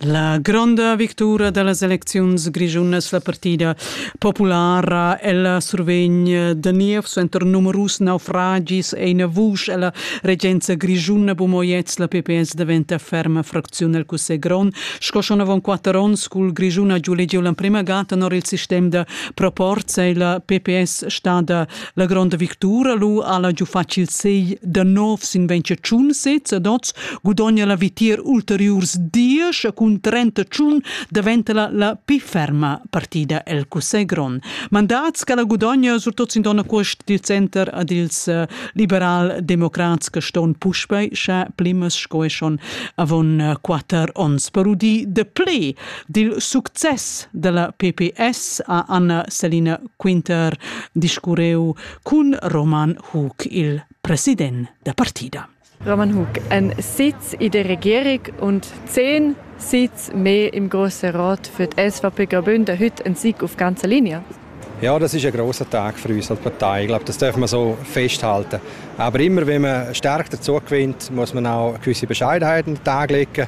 La gronda victura da las elecziuns grischunas, la partida populara, ella survegn da niev suenter numerus naufragis e ina vusch ella regenza grischuna. Bumoyets, la PPS daventa ferma fracziun el cussegl grond. Sco schon avon quatter onns cul Grischuna giu legiu l'emprema ga tenor il sistem da proporz ei la PPS stada La gronda victura lu alla giu facil sei da novs in ventschun sez ad oz gudogna la vitier ulteriurs diesch cun trenta tschun daventa la, la pi ferma partida el Cussegl grond. Mandats che la gudogna surtot sin donna quest dil center ad ils uh, liberal-democrats che ston puspei sche plimas sco e schon avon uh, quatter ons per udi de ple Dil success dalla PPS ha Anna Selina Quinter discurreu cun Roman Hug, il president da partida. Roman Hug, ein sez ed regierig und zehn sitz me im grossen Rat für die SVP Graubünden heute ein Sieg auf ganzer Linie. Ja, das ist ein grosser Tag für uns als Partei. Ich glaube, das dürfen wir so festhalten. Aber immer wenn man stärker dazu gewinnt, muss man auch gewisse Bescheidenheiten an den Tag legen.